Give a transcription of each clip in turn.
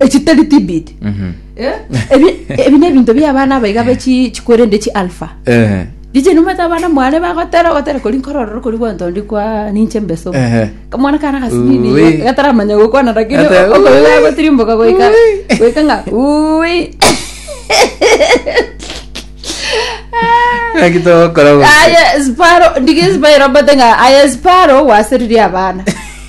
echitari tibit Eh? ebi ebi nebinto bia abana abaiga bechi chikwerende chi alpha Eh, riche numata abana mwane bagotera ogotera kori nkorororo kori gwantondi kwa ninche mbeso Ehe. kamwana kana gasinini Ui. gataramanya gokwana lakini Gata- okoiga Ui. gotirimboka goika Ui. goika ng'a ui Ng'aki togokora gose. aye sparo ndigi sparo bate ng'a aye sparo waseririe abana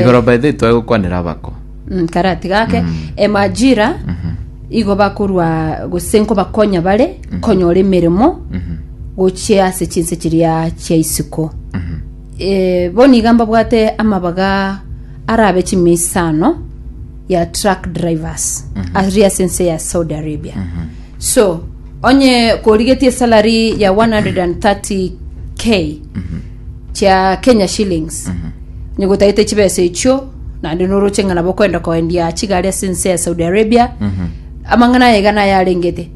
Igoro by the way twagokwanera abako. Mm, karatiga ake emajira igo bakorwa gose nkobakonya bare konyora emeremo gochia ase chinse chiria chia isiko Eh, bono iga mbabwate amabaga arabe chimiisano ya truck drivers ari ase ense ya saudi arabia so onye korigetie salary ya 130k chia kenya shillings onye gotagete chibesa echio naende noroche ng'a nabo okwenda koendia chigari ase ense ya saudi arabia amang'ana aye iga naye arengete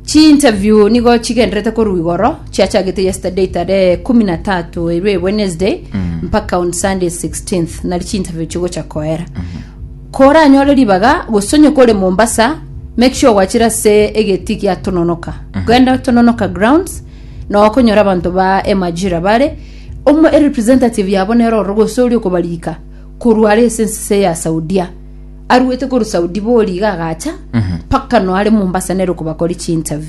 chiinterview nigo chigendererete korwa igoro chiachagete yesterday tarehe kumi na tatu erwe ya wednesday mpaka on sunday 16th nari chiinterview chigocha koera koranyore ribaga gose onye kore mombasa make sure gwachire ase egeti gia tononoka genda tononoka grounds na okonyora abanto ba emajira bare, omo erepresentative yabo nere ororo gose oria okobariika korwa are ase ensese ya Saudia. Aruete korwa Saudi boria iga agacha mpaka no are Mombasa nere okobakori chi interview.